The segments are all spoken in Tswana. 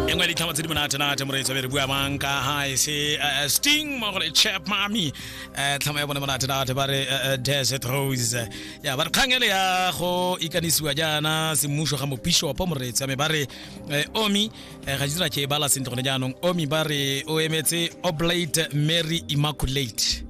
e nngwe ya ditlhama tse di monatenate moreetsa be re bua mang ka ga e se eh, eh, sting mo gore chap mami eh, tlhama ya bone monatenate ba re eh, eh, desert rose Eh, ya ba re kgang ele ya go ikanisiwa jaana semmuso ga mopishopo moreetsa me ba re eh, omi eh, ga dira ke e bala sentle gone jaanong omi ba re o emetse oblate mary immaculate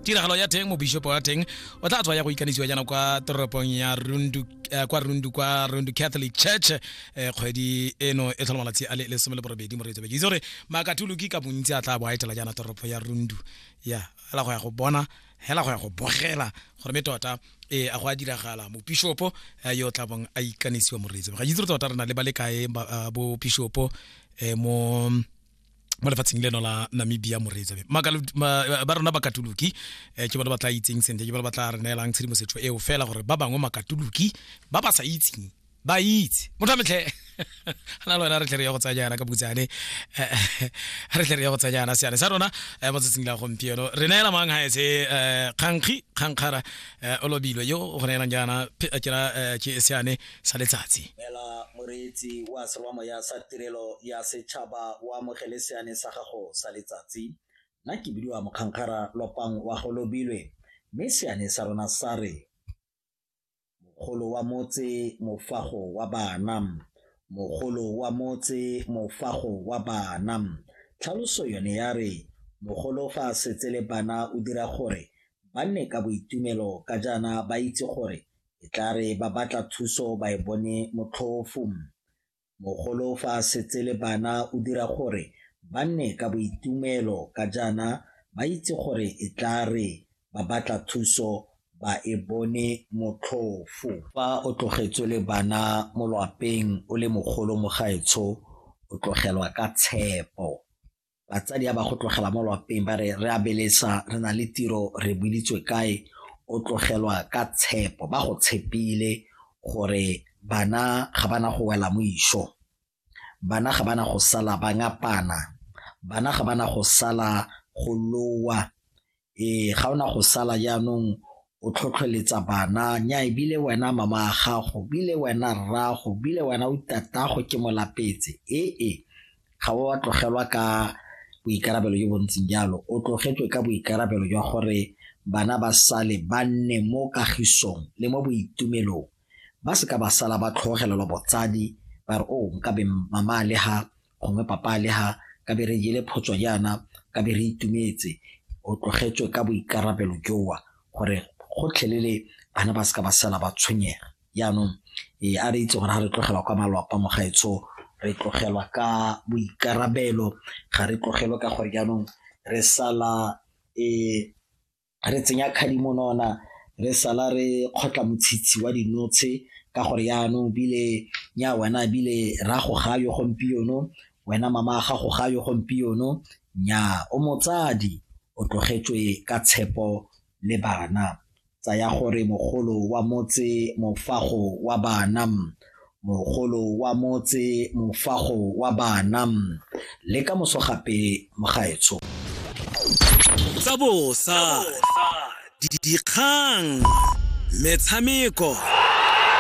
tiragalo ya teng mobishopo wa teng o tla tswa ya go ikanisiwa jaana kwa toropong ya rundu eh, kwa rundu kwa rundu catholic church eh, kgwedi eno e tlhola malatsi a le lesome le borobedi moreetso beke itse gore maakatuluki ka bontsi a tla bo a etela jaana toropo ya rundu ya fela go ya go bona hela go ya go bogela gore me tota e a go a diragala mopishopo eh, yo o tla bong a ikanisiwa moreetso ga itse gore tota re na le ba le kae ba- eh, bo pishopo eh, mo mo lefatsheng leno la namibia moreetsa ba rona bakatoloki um ke bone ba tla itseng sentle ke bone ba tla re neelang tshedimosetso eo fela gore ba bangwe makatoloki ba ba sa itseng ba itse motho a metlhe ana le wena re tle re ya go tsaya jaana ka butsane re tle re ya go tsaya jaana seane sa rona eh, mo tsatsing la gompieno re neela mang ga etse eh, kgankgi kgankgara eh, o lobilwe yo go neelang jaana ke seane sa letsatsi mela moreetsi wa serwamoya sa tirelo ya setšhaba o amogele seane sa gago sa letsatsi nna ke bidiwa mokgankgara lopang wa go lobilwe mme seane sa rona sa re mogolo wa motse mofago wa bana mogolo wa motse mofago wa bana tlhaloso yone ya re mogolo fa a setse le bana o dira gore ba nne ka boitumelo ka jaana ba itse gore e tla re ba batla thuso ba e bone motlhofu. Mogolo fa a setse le bana o dira gore ba nne ka boitumelo ka jaana ba itse gore e tla re ba batla thuso ba e bone motlhofu. Fa o tlogetswe le bana mo lwapeng o le mogolo mo gaetsho o tlogelwa ka tshepo. batsadi a ba go tlogela mo lwapeng ba re re a belesa re na le tiro re builitswe kae o tlogelwa ka tshepo ba go tshepile gore bana ga bana go wela mo iso bana ga bana go sala ba ngapana bana ga bana go sala go lowa ee ga ona go sala jaanong o tlhotlheletsa bana nya ebile wena mama a gago bile wena rrago bile wena o itatago ke molapetse ee e, ga o wa tlogelwa ka boikarabelo jo bontseng jalo o tlogetswe ka boikarabelo jwa gore bana ba sale ba nne mo kagisong le mo boitumelong ba se ka ba sala ba tlhogelelwa botsadi ba re o oh, nkabe mama le ga gongwe papa le ha ka be re jele photswa jaana ka be re itumetse o tlogetswe ka boikarabelo jowa gore gotlhelele bana ba seka ba sala ba tshwenyega jaanong e a re itse gore ga re tlogelwa kwa malwapa mogaetsho re tlogelwa ka boikarabelo ga re tlogelwe ka gore jaanong re sala e re tsenya khadimonona re sala re kgotla motshitshi wa dinotshe ka gore yaanong bile nya wena bile ra go ga yo gompieno wena mama ga go ga yo gompieno nya o motsadi o tlogetswe ka tshepo le bana tsaya gore mogolo wa motse mofago wa bana mogolo wa motse mofago wa bana le ka moso gape mogaetsho tsa bosa dikgang metshameko